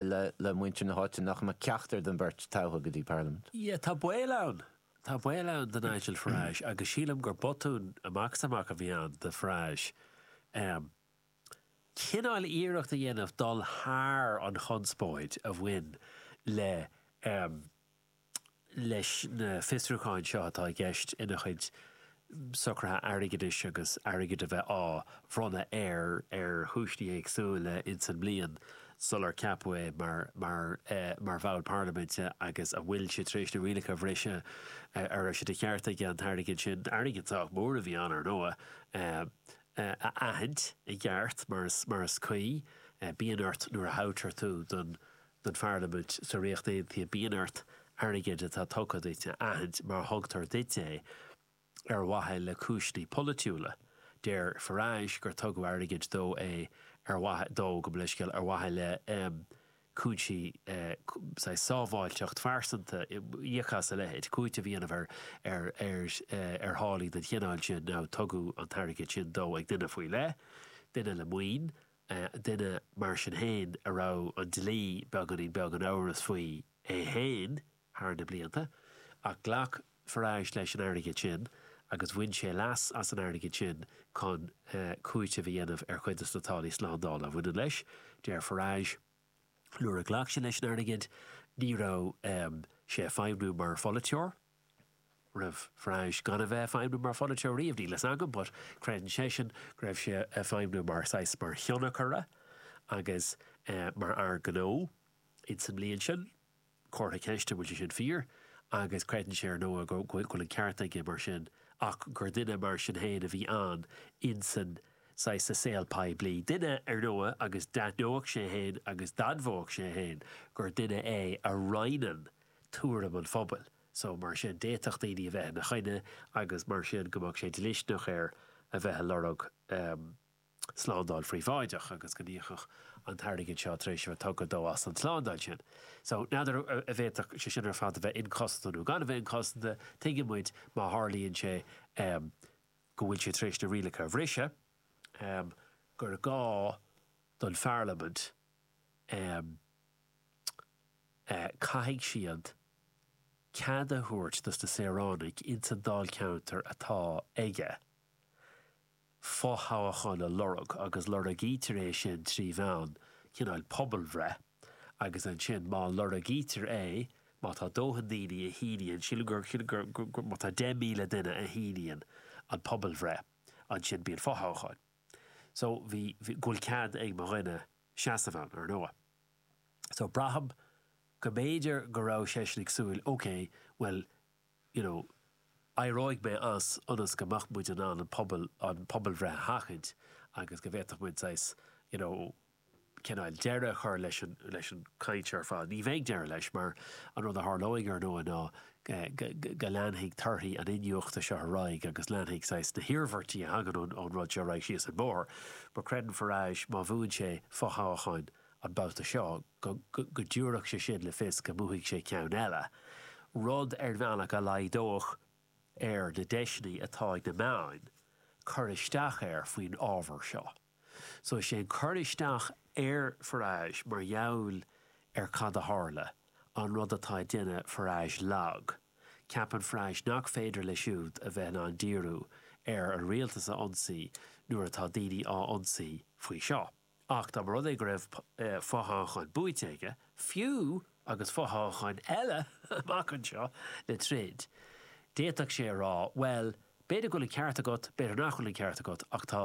le muintir na háite nach mbeadh ceachtar den bheirt toghtha go dtí Parlaimint. Yeah, tá baol ann. Tá baol ann do Nigel Farage agus sílim gur botún amach is amach a bhí ann do Farage em cineál iarracht a dhéanamh dul thar an chonspóid a bhain le em leis na fiosrúcháin seo atá i gceist ina chuid socruithe airgeadais agus airgead a bheith á bhronnadh air ar chúinsí éagsúla ins an mbliain sular ceapadh é mar bhall parlaiminte agus a bhfuil sé tar éis na rialacha a bhriseadh a raibh sé de cheart aige an t-airgead sin, airgead sách mór a bhí ann, ar ndóigh, a aithint i gceart mar is cuí. Bíonn ort nuair a thoghtar tú don don Pharlaimint sa Ríocht Aontaithe bíonn ort airgead atá tugtha duit a aithint mar a thugtar duit é ar mhaithe le cúinsí polaitiúla. Deir Farage gur tugadh airgead dó é ar mhaithe dó gabh mo leithscéal ar mhaithe le cúinsí saghas sábháilteacht phearsanta íoc as a leithéid cúiteamh a dhéanamh ar ar ar ar tháillí den chineál sin nó tugadh an t-airgead sin dó ag duine faoi leith, duine le maoin, duine mar sin féin a raibh an dlí beagáinín beag in amhras faoi é féin thar na blianta, ach ghlac Farage leis an airgead sin agus bhain sé leas as an airgead sin chun cúiteamh a dhéanamh ar chuid de na táillí slándála a bhaineann leis. Deir Farage, Nuair a ghlac sé leis an airgead, ní raibh sé ag feidhmniú mar pholaiteoir. raibh Farage gan a bheith ag feidhmiú mar pholaiteoir riamh, níl fhios agam, but creideann seisean go raibh sé ag feidhmiú mar saghas, mar thionchaire agus mar fhear gnó in sa mbliain sin. Comhartha ceist an bhfuil sé sin fíor agus creideann sé ar ndóigh go bhfuil an ceart aige mar sin ach gur duine mar sin fhéin a bhí ann in san saghas sa saol poiblí. Duine ar ndóigh agus d'aithneodh sé fhéin agus d'admhódh sé fhéin gur duine é a roinneann tuairim an phobail. So, mar sin, d'fhéadfadh daoine a bheith ina choinne agus mar sin go mbeadh sé dlisteanach air a bheith ag lorg slándáil phríobháideach agus go n-íocfadh an t-airgead seo tar éis a bheith tugtha dó as an tslándáil sin. So, n'fheadar a bhféadfadh sé sin ar fad a bheith inchosanta nó gan a bheith inchosanta, tuigeann muid má tharlaíonn sé go bhfuil sé tar éis na rialacha a bhriseadh gur gá don pharlaimint, caithfidh siad cead a thabhairt dos na saoránaigh ins an dáilcheantar atá aige fo-thoghachán a lorg agus lorgaítear é sin trí mheán cineál pobalbhreith agus ansin má lorgaítear é, má tá dóthain daoine a shíníonn, sílim gur, sílim gur, gur, gur, má tá 10,000 duine a shíníonn an pobalbhreith ansin bíonn fo-thoghachán. So bhí, bhí, go bhfuil cead ag mo dhuine seasamh ann, ar ndóigh. So, braithim go mb'fhéidir go raibh seisean ag súil, OK, bhuel, you know, éireoidh mé as ionas go mbeadh muid in ann an pobal, an phobalbhreith a sheachaint agus go bhféadfadh muid saghas, you know, cineál deireadh a chur leis an, leis an gcaint ar fad. Ní bheidh deireadh leis mar an rud a tharlóidh, ar ndóigh, ná go leanfaidh torthaí an iniúchta seo ar aghaidh agus leanfaidh saghas na hiarmhairtí a thagann ón rud seo ar aghaidh síos an bóthar, mar creideann Farage má bhuann sé fothoghchán an babhta seo go dtiúrfadh sé sin le fios go mbuafaidh sé ceann eile, rud ar bhealach a laghdódh ar na deiseanna atá ag na meáin cur isteach air faoin ábhar seo. So is é an cur isteach ar Farage mar gheall ar cad a tharla an rud atá ag déanamh Farage lag. Ceapann Farage nach féidir leis siúd a bheith in ann díriú ar an rialtas a ionsaí nuair atá daoine á ionsaí faoi seo. Ach dá mba rud é go raibh fothoghchán buaite aige, fiú, agus fothoghcháin eile amach anseo le troid, d'fhéadfadh sé a rá, bhuel, b'fhéidir go bhfuil an ceart agat, b'fhéidir nach bhfuil an ceart agat, ach tá,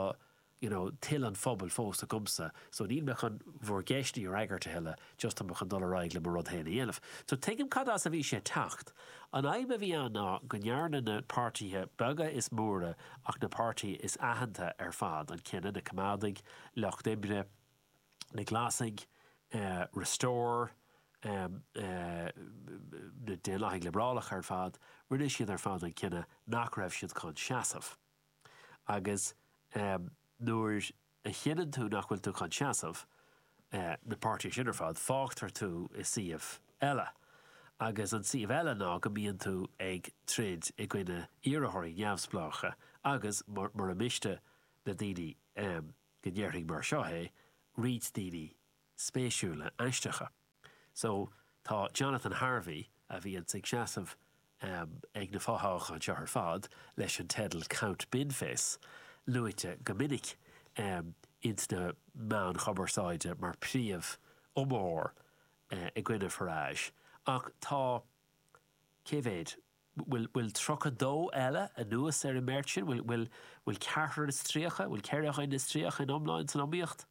you know, toil an phobail fós agamsa, so níl mé chun bhur gceisteanna a fhreagairt a thuilleadh, just tá mé chun dul ar aghaidh le mo rud féin a dhéanamh. So tuigim cad as a bhí sé ag teacht. An fhadhb a bhí ann ná go ndearna na páirtithe beaga is móra ach na páirtithe is aitheanta ar fad, an cinneadh, na Coimeádaigh, Lucht Oibre, na Glasaigh, Restore, na Daonlathaigh Liobrálacha ar fad, rinne siad ar fad an cinneadh nach raibh siad chun seasamh. Agus nuair a chinneann tú nach bhfuil tú chun seasamh, na páirtithe sin ar fad, fágtar tú i suíomh eile. Agus an suíomh eile ná go mbíonn tú ag troid i gcoinne iarrthóirí neamhspleácha agus, mura miste, na daoine. go ndéarfaidh mé mar seo é roinnt daoine spéisiúla aisteacha. So, tá Jonathan Harvey, a bhíonns ag seasamh ag na fothoghcháin seo ar fad leis an teideal Count Binface, luaite go minic ins na meáin chumarsáide mar príomhiomaitheoir i gcoinne Farage, ach tá, cé mhéid, bhfuil 32 eile anuas ar an mbeirt sin, bhfuil ceathrar is tríocha, bhfuil ceithre dhuine is tríocha in iomlán san iomaíocht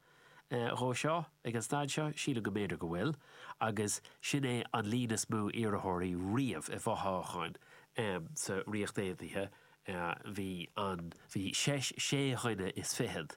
dhó seo ag an staid seo, sílim go mb'fhéidir go bhfuil, agus sin é an líon is mó iarrthóirí riamh i bhfothoghchán sa Ríocht Aontaithe, bhí sé dhuine is fichead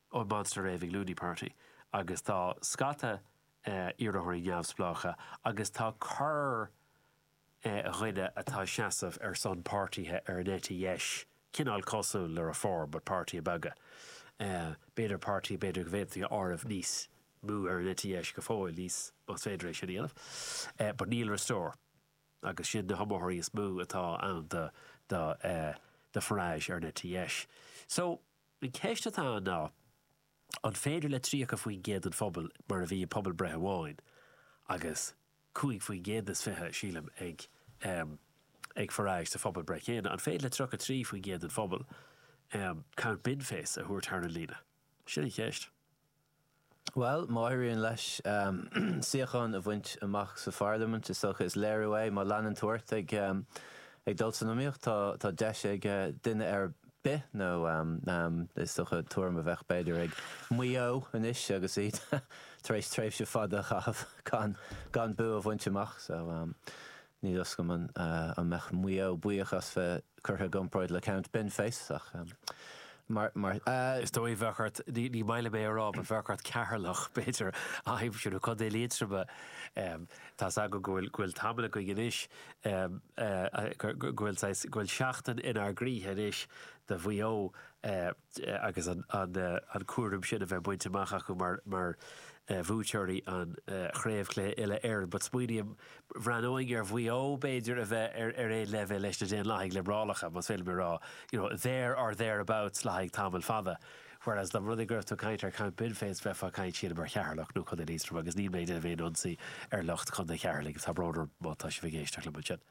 ón Monster Raving Loony Party agus tá scata iarrthóirí neamhspleácha agus tá corrdhuine atá ag seasamh ar son páirtithe ar an eite dheis, cineál cosúil le Reform but páirtithe beaga, páirtithe b'fhéidir go bhféadfaí a áireamh níos mó ar an eite dheis go fóill níos, más féidir é sin a dhéanamh, but níl Restore agus sin na hiomaitheoirí is mó atá ann do Farage ar an eite dheis. So. An cheist atá ann ná, an féidir le 30% den phobal, mar a bhí i bpobalbhreith amháin, agus 5% is fiche, sílim, ag, em, ag Farage sa phobal breith chéanna, an féidir le 33% den phobal, em, Count Binface a thabhairt thar an líne? Sin an cheist. Bhuel, má éiríonn leis suíochán a bhaint amach sa Pharlaimint, is dócha, is léiriú é, má leanann tú ort ag dul san iomaíocht, tá, tá deis ag duine ar bith, nó is dócha, tuairim a bheadh, b'fhéidir, ag Maigh Eo anois agus iad tar éis tréimhse fada a chaitheamh gan, gan bua a bhaint amach. So, Ní dóigh liom an mbeadh Maigh Eo buíoch as bheith curtha i gcomparáid le Count Binface ach mar. Is dóigh go mbeadh ort, ní maith liom é a rá, but bheadh ort Ceatharlach b'fhéidir a aimsiú, nó Contae Liatroma. Tá's agam go bhfuil tamall againn anois go bhfuil seachtain inár gcroíthe anois do Mhaigh Eo. agus an cúram sin a bheith bainte amach acu mar bhuaiteoirí an Chraobh Cluiche Uile-Éireann. But smaoiním, bhreathnóinn ar Mhaigh Eo, b'fhéidir, a bheith ar aon leibhéal leis na Daonlathaigh Liobrálacha, más féidir liom a rá, you know, there or thereabouts le haghaidh tamall fada. Whereas dá mba rud é go raibh tú ag caint ar Count Binface, bheifeá ag caint, sílim, ar Cheatharlach nó Contae Liatroma, agus níl mé ag déanamh aon ionsaí ar lucht Chontae Cheatharlaigh, tá brón orm má tá sibh ag éisteacht liom ansin.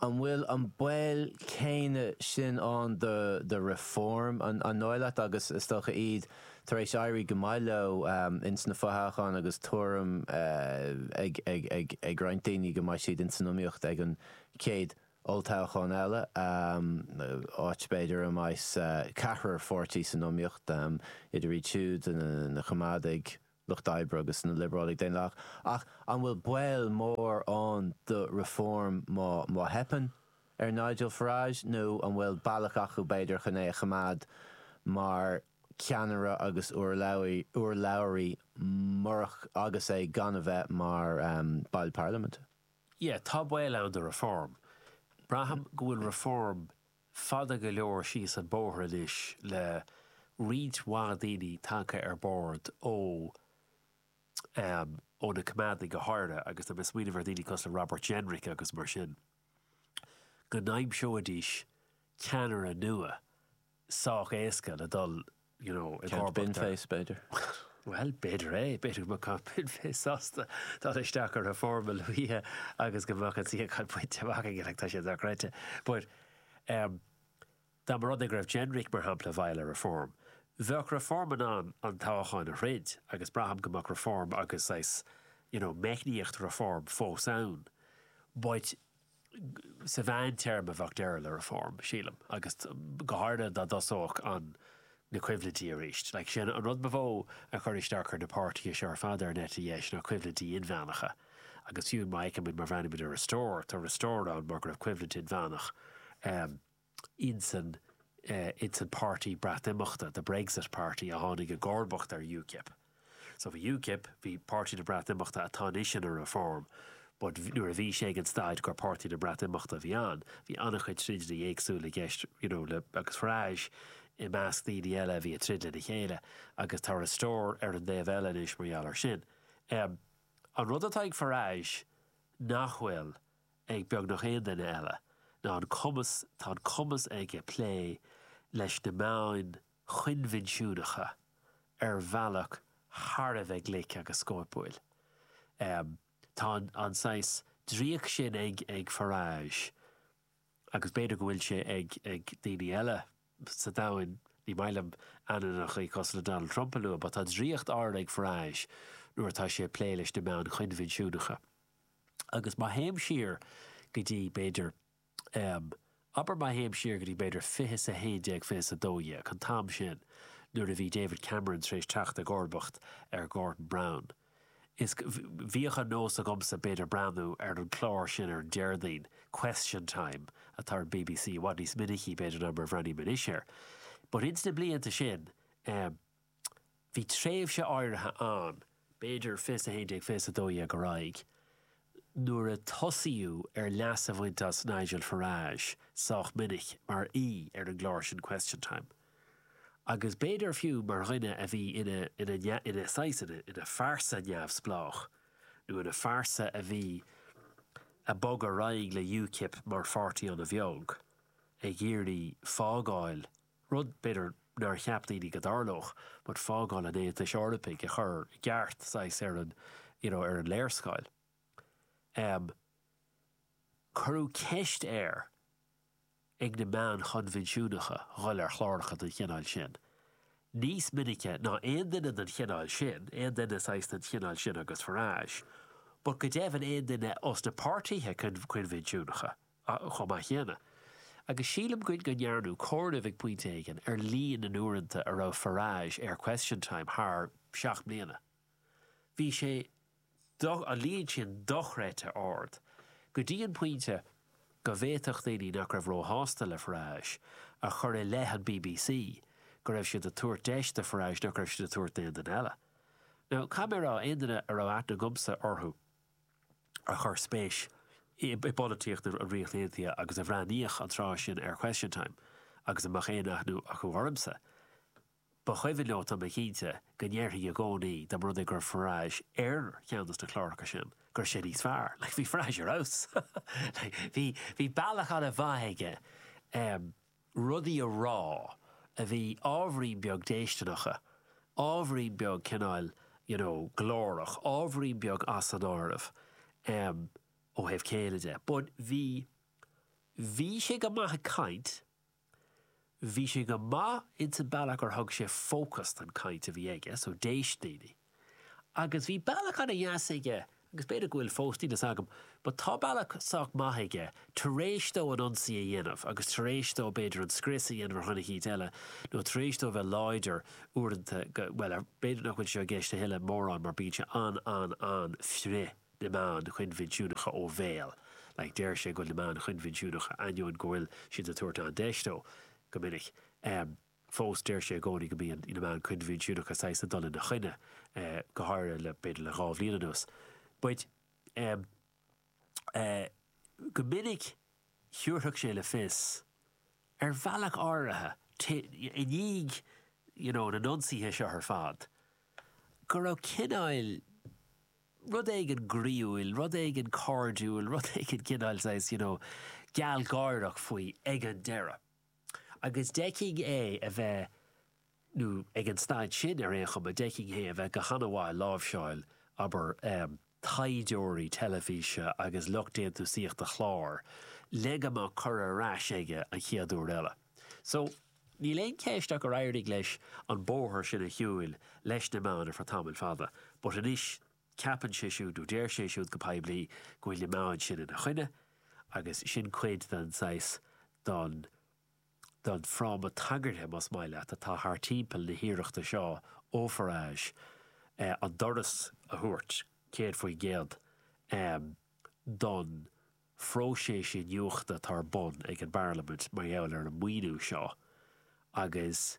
An bhfuil an baol céanna sin ann do Reform? An dóigh leat, agus is dócha, iad tar éis éirí go maith leo ins na fothoghcháin agus tuairim ag roinnt daoine go mbeidh siad ins an iomaíocht ag an chéad olltoghchán eile, áit, b'fhéidir, a mbeidh ceithre pháirtí san iomaíocht, idir iad siúd, na Coimeádaigh, Lucht Oibre agus na Liobrálaigh Dhaonlathacha, ach an bhfuil baol mór ann do Reform má theipeann ar Nigel Farage, nó an bhfuil bealach acu, b'fhéidir, chun é a choimeád mar cheannaire agus urlabhraí murach agus é gan a bheith mar bhall Parlaiminte? Yeah, tá baol ann do Reform. Braithim go bhfuil Reform fada go leor síos an bóthar anois le roinnt mhaith daoine tagtha ar bord ó ó na coimeádaigh go háirithe agus tá mé ag smaoineamh ar dhaoine cosúil le Robert Jenrick agus mar sin go n-aimseoidís ceannaire nua sách éasca le dul you know, ag Count Bin Face, b'fhéidir. Bhuel, b'fhéidir é, b'fhéidir go mbeadh Count Bin Face sásta dul isteach ar Reform a luaithe agus go mbeadh an suíochán bainte amach aige, like, tá sé dochreidte. But, um, dá mba rud é go raibh Jenrick, mar shampla, i mbun Reform, bheadh Reform in ann an toghchán a throid agus braithim go mbeadh Reform agus, saghas, you know, meicníocht Reform fós ann. But, Sa mheántéarma bheadh deireadh le Reform, sílim, agus go háirithe dá dtosódh an na coimhlintí arís. Like, sé an rud ba mhó a chuir isteach ar na páirtithe seo ar fad ar an eite dheis ná coimhlintí inmheánacha. Agus fiú má fheicimid má bhreathnaímid ar Restore, tá Restore ann mar go raibh coimhlint inmheánach ann. insan páirtí Breatnimeachta, the Brexit Party, a tháinig i gcomharbacht ar UKIP. So bhí UKIP, bhí Páirtí na Breatnimeachta, atá anois ina Reform, but nuair a bhí sé ag an staid gur Páirtí na Breatnimeachta a bhí ann, bhí an-chuid troideanna éagsúla i gceist you know le, agus Farage i measc daoine eile a bhí ag troid lena chéile agus tá Restore ar an dtaobh eile anois mar gheall ar sin. An rud atá ag Farage nach bhfuil ag beagnach aon duine eile ná an cumas, tá an cumas aige plé leis na meáin choinbhinsiúnacha ar bhealach thar a bheith glic agus scóipiúil. Tá an saghas draíocht sin ag Farage, agus b'fhéidir go bhfuil sé ag daoine eile sa domhain, ní maith liom ainmneacha cosúil le Donald Trump a lua, but tá draíocht áirid ag Farage nuair atá sé ag plé leis na meáin choinbhinsiúnacha. agus má théim siar go dtí, b'fhéidir, em, abair má théim siar go dtí, b'fhéidir, fiche 's a haon déag, fiche 's a dó dhéag, an t-am sin, nuair a bhí David Cameron tar éis teacht i gcomharbacht ar Gordon Brown, is, bhíodh an nós agamsa, b'fhéidir, breathnú ar an clár sin ar an Déardaoin, Question Time, atá ar an BBC, i bhfad níos minicí, b'fhéidir, ná mar a bhreathnaím anois air. But ins na blianta sin, em, Bhí tréimhse áirithe ann, b'fhéidir fiche 's a haon déag, fiche 's a dó dhéag ar aghaidh, nuair a tosaíodh ar leas a bhaint as Nigel Farage sách minic mar aoi ar an gclár sin Question Time, agus b'fhéidir fiú mar dhuine a bhí ina, ina, ina saghas, ina, ina phearsa neamhspleách, nó ina phearsa a bhí, a bhog ar aghaidh le UKIP mar pháirtí an-bheag, ag iarraidh fágáil rud, b'fhéidir, nár cheap daoine go dtarlódh, but fágáil an Aontais Eorpaigh a chur i gceart, saghas, ar an, you know, ar an léarscáil. Em. cuireadh ceist air ag na meáin choinbhinsiúnacha dhul ar chláracha den chineál sin, níos minice ná aon duine den chineál sin, aon duine, saghas, den chineál sin agus Farage, but go deimhin aon duine ós na páirtithe coinbhinsiúnacha. Ach chomh maith céanna, agus sílim go ndearnadh comhaireamh ag pointe éigin ar líon na n-uaireanta a raibh Farage ar Question Time thar seacht mbliana, bhí sé do, an líon sin, dochreidte ard, go dtí an pointe go bhféadfadh daoine nach raibh róshásta le Farage a chur i leith an bbc go raibh siad ag tabhairt deis do Farage nach raibh siad ag tabhairt d'aon duine eile. Now, cad é mar a déarfá aon duine a raibh aithne agamsa orthu, a chuir spéis i bpolaitíocht na Ríochta Aontaithe agus a bhreathnaíodh an tráth sin ar Question Time agus a mbeadh aon aithne acu ormsa, ba chuimhin leo, tá mé cinnte, go ndéarfainn i gcónaí, dá mba rud é go raibh Farage ar cheann de na cláracha sin, go raibh sé níos fearr. Like, bhí Farage ar fheabhas. Like, bhí bealach ana mhaith aige. rudaí a rá a bhí ábhairín beag déistineacha, ábhairín beag cineál you know glórach, ábhairín beag as an áireamh em ó thaobh céille de but bhí, bhí sé go maith ag caint, bhí sé go maith insan bealach ar thug sé fócas don chaint a bhí aige so d'éist daoine. Agus bhí bealach ana dheas aige, agus b'fhéidir go bhfuil fós, níl fhios agam, but tá bealach sách maith aige, tar éis dó an ionsaí a dhéanamh, agus tar éis dó b'fhéidir an scrios a dhéanamh ar Choincheap eile, nó tar éis dó bheith láidir, uaireanta, go, bhuel, ar, b'fhéidir nach bhfuil sé i gceist a thuilleadh mórán mar bíonn sé an, an, an, frith na meáin choinbhinsiúnacha ó bhéal, like deir sé go bhfuil na meáin choinbhinsiúnacha, ainneoin go bhfuil siad ag tabhairt an-deis dó, go minic, eh. fós deir sé i gcónaí go mbíonn na meáin coinbhinsiúnacha saghas ag dul ina choinne, go háirithe le, b'fhéidir le dhá bhliain anuas. But em eh go minic thiúrfadh sé le fios, ar bhealach áirithe, ti i ndiaidh you know na n-ionsaithe seo ar fad, go raibh cineáil, rud éigin groíúil, rud éigin cairdiúil, rud éigin cineáil saghas you know gealgháireach faoi ag an deireadh. Agus d'fheicfinn é a bheith, nó ag an staid sin ar aon chuma, d'fheicfinn é a bheith go hana-mhaith ag láimhseáil, abair, taighdeoirí teilifíse agus lucht déantúsaíochta chlár, le go mbeadh cuireadh ar ais aige an chéad uair eile. So, níl aon cheist ach gur éirigh leis an bóthar sin a shiúil leis na meáin ar feadh tamaill fada, but anois Ceapann sé siúd, nó deir sé siúd go poiblí, go bhfuil na meáin sin ina choinne, agus sin cuid den saghas, den, den fráma tagartha, más maith leat, atá thart timpeall na hiarrachta seo ó Farage an doras a thabhairt, céad faoin gcéad, don phróiseas iniúchta atá ar bun ag an bParlaimint mar gheall ar an maoiniú seo, agus.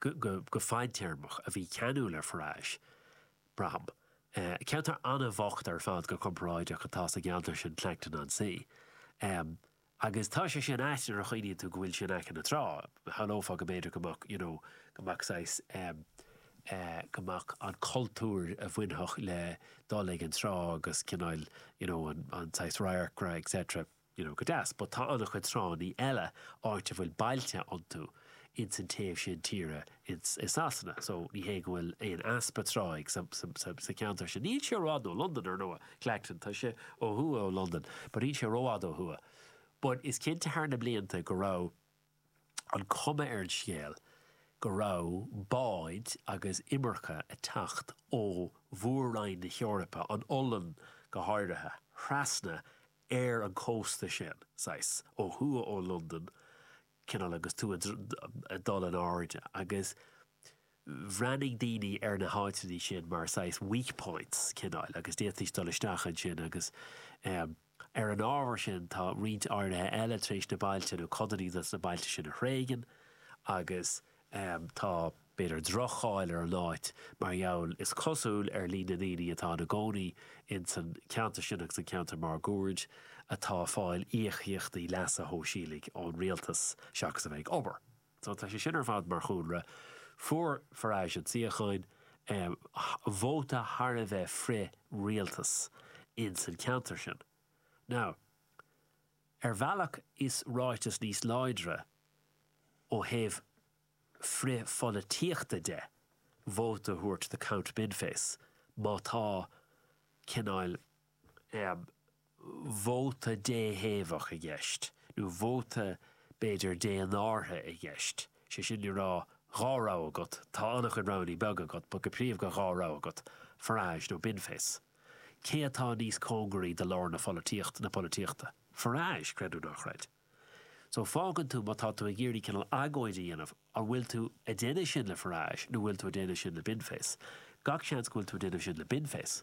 go fadtéarmach a bhí ceanúil ar Farage, braithim. Ceantar an-bhocht ar fad go comparáideach atá sa gceantar sin, Clacton-on-Sea. Agus tá sé sin ait nuair a chuimhníonn tú go bhfuil sé in aice na trá. Shamhlófá go mb'fhéidir go mbeadh, you know, go mbeadh saghas, go mbeadh an cultúr a bhainfeadh le dul ag an trá agus cineál, you know, an saghas radharcra, etc. You know, go deas, but tá an-chuid tránnaí eile, áit a bhfuil bailte iontu, ins an taobh sin tíre ins, i Sasana, so ní hé go bhfuil aon easpa tráigh sa cheantar sin. Níl sé rófhada ó Londain, ar ndóigh, Clacton, tá sé ó thuaidh ó Londain, but níl sé rófhada ó thuaidh. But is cinnte thar na blianta go raibh an cuma ar an scéal go raibh báid agus imirce a' teacht ó Mhór-Roinn na hEorpa, an Ollainn go háirithe, thrasna ar an cósta sin, saghas, ó thuaidh ó Londain, cineál, agus tú ag dul in airde, agus bhreathnaigh daoine ar na háiteanna sin mar saghas weak points, cineál, agus d'fhéadfaidís dul isteach ansin, agus ar an ábhar sin, tá roinnt áirithe eile tar éis na bailte, nó codanna de na bailte sin a thréigean, agus Tá, b'fhéidir, droch-cháil ar an áit mar gheall, is cosúil, ar líon na ndaoine atá ina gcónaí insan cheantar sin agus an ceantar máguaird atá ag fáil íocaíochtaí leasa shóisialaigh ón rialtas seachas a bheith ag obair. So, tá sé sin ar fad mar chúlra. Fuair Farage an suíochán, vóta thar a bheith frith-rialtas insan cheantar sin. Now. Ar bhealach is ráiteas níos láidre ó thaobh frithpholaitíochta de vóta a thabhairt do Count Binface má tá cineál vóta déthaobhach i gceist, nó vóta b'fhéidir dénártha i gceist, sé sin le rá dhá rogha agat, tá an-chuid roghanna beaga agat but go príomha dhá rogha agat, Farage nó Binface. Cé atá níos cóngaraí do lár na pholaitíochta, na polaitíochta? Farage, creid nó ná creid. So, fágann tú, má tá tú ag iarraidh cineál agóid a dhéanamh, an bhfuil tú a' déanamh sin le Farage nó bhfuil tú a' déanamh sin le Binface? Gach seans go bhfuil tú a' déanamh sin le Binface.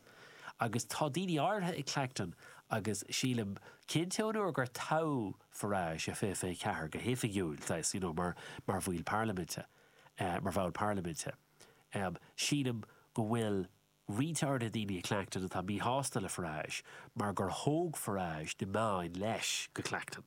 Agus tá daoine áirithe i Clacton agus sílim, cinnte ón uair gur toghadh Farage i 2024 go hoifigiúil, saghas, you know, mar, mar bhaill parlaiminte, eh, mar bhall parlaiminte, em, sílim go bhfuil, roinnt áirithe daoine in Clacton atá míshásta le Farage mar gur thóg Farage na meáin leis go Clacton.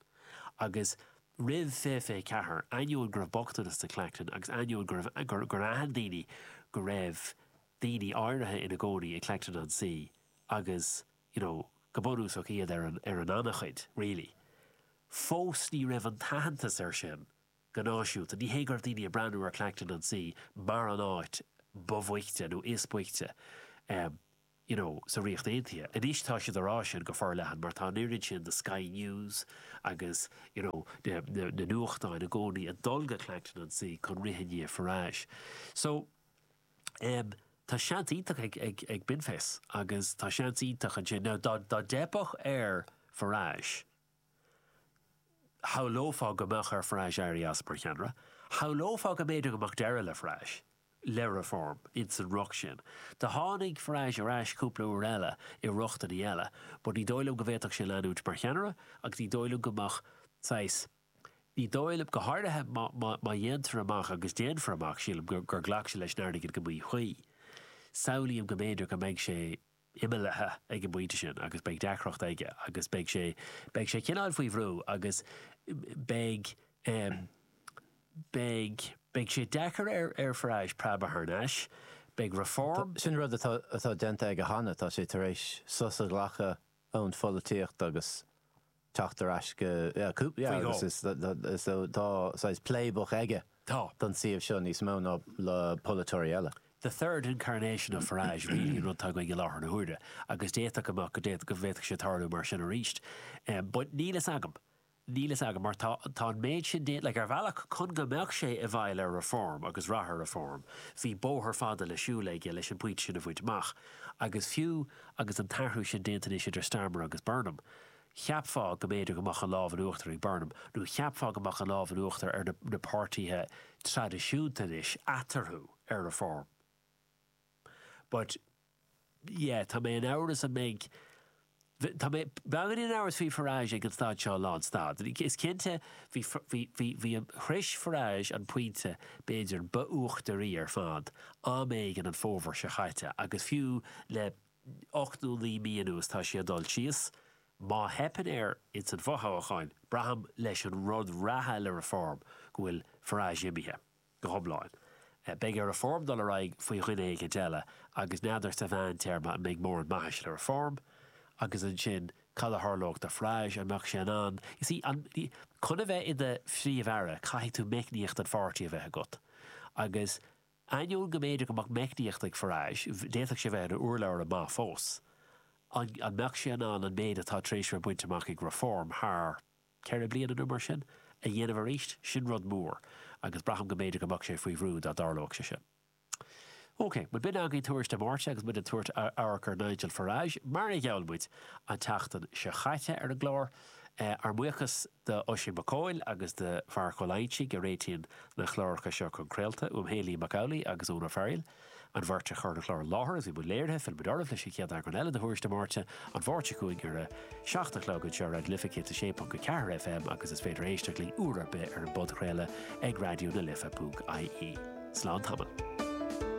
Agus roimh 2024, ainneoin go raibh bochtanas in Clacton agus ainneoin gur aithin daoine go raibh daoine áirithe ina gcónaí in Clacton-on-Sea agus you know go bunúsach iad ar an anchaoi really, fós ní raibh an t-aitheantas air sin. go náisiúnta. Ní hé go raibh daoine ag breathnú ar Clacton-on-Sea mar an áit ba bhoichte nó is boichte you know sa Ríocht Aontaithe. Anois tá siad á rá sin go forleathan mar tá an oiread sin de Sky News agus you know na na nuachtáin i gcónaí ag dul go Clacton-on-Sea chun rith i ndiaidh Farage. So em tá seans iontach ag ag ag Binface agus tá seans iontach ansin. Now dá dá dteipfeadh ar Farage, Shamhlófá go mbeadh ar Farage éirí as mar cheannaire. Shamhlófá go mb'fhéidir go mbeadh deireadh le Farage, le Reform, ins an riocht sin. Do tháinig Farage ar ais cúpla uair eile i rochtainí eile, but ní dóigh liom go bhféadfadh sé leanúint mar cheannaire agus ní dóigh liom go mbeadh saghas, ní dóigh liom, go háirithe má dhéantar amach, agus déanfar amach, sílim, gur ghlac sé leis an airgead go míchuí, samhlaím go mb'fhéidir go mbeidh sé. imeallaithe ag an bpointe sin agus beidh deacracht aige agus beidh sé, beidh sé cineáil faoi bhrú agus beidh, beidh, beidh sé deacair ar Farage, preabadh thar n-ais. Beidh Reform. Sin rud atá, atá déanta aige cheana, tá sé tar éis sos a ghlacadh ón pholaitíocht agus teacht ar ais go, yeah, cúpla, yeah, agus is, so, tá saghas playbook aige Tá. don suíomh seo níos mó ná le polaiteoirí eile. the third incarnation of Farage really an rud atá againn i láthair na huaire agus d'fhéadfadh go mbeadh, go bhféadfadh sé tarlú mar sin arís but níl fhios agam, níl fhios agam mar tá, tá an méid sin déanta, like ar bhealach chun go mbeadh sé i bhfeighil ar Reform agus rath ar Reform bhí bóthar fada le siúl aige leis an bpointe sin a bhaint amach agus fiú agus an t-athrú sin déanta anois idir Starmer agus Burnham, Cheapfá go mb'fhéidir go mbeadh an lámh in uachtar ag Burnham, nó cheapfá go mbeadh an lámh in uachtar ar na páirtithe traidisiúnta anois, eatarthu, ar Reform. But, yeah, tá mé in amhras an mbeidh, tá mé beagáinín in amhras faoi Farage ag an staid seo, lánstad. Is cinnte, bhí, bhí, bhí, bhí an, shroich Farage an pointe, b'fhéidir, ba uachtaraí ar fad, am éigin an fómhar seo chaite, agus fiú le, Ocht nó naoi mí anuas tá sé ag dul síos. Má theipeann air ins an bhfothoghchán, braithim, leis an rud reatha le Reform, go bhfuil Farage imithe. Go hiomlán. Beidh ar Reform dul ar aghaidh faoi dhuine éigint eile, agus n'fheadar sa mheántéarma an mbeidh móran maithis le Reform. Agus ansin, cad a tharlódh do Farage? An mbeadh sé in ann, you see, an, chun a bheith i do Phríomh-Aire caithfidh tú meicníocht an pháirtí a bheith agat. Agus Ainneoin go mb'fhéidir go mbeadh meicníocht ag Farage, d'fhéadfadh sé bheith ina urlabhraí maith fós. An mbeadh sé in ann an méid atá tar éis bheith bainte amach ag Reform thar ceithre bliana nó mar sin, a dhéanamh arís? Sin rud mór, agus braithim go mb'fhéidir go mbeadh sé faoi bhrú dá dtarlódh sé sin. OK, bhuel bhí againn tuairisc Mhártain agus muid ag tabhairt amhairc ar Nigel Farage, mar a gheall muid an tseachtain seo chaite ar an gclár. Ár mbuíochas. d'Oisín Mac Cóil agus do Mharc Ó Loingsigh a réitíonn na cláracha seo chun craolta, uaim féin, Liam Mac Amhlaigh agus Eoin Ó Fearaíl, an bheirt againn a chuir an clár i láthair is a bhí i mbun léirithe, fillfimid oraibh leis an chéad eagrán eile de Thuairisc Dé Máirt, an Mháirt seo chugainn ar a 7 a chlog anseo ar Raidió na Life 106.4 FM agus is féidir éisteacht linn uair ar bith ar an bpodchraoladh ag raidionalife.ie. Slán tamall.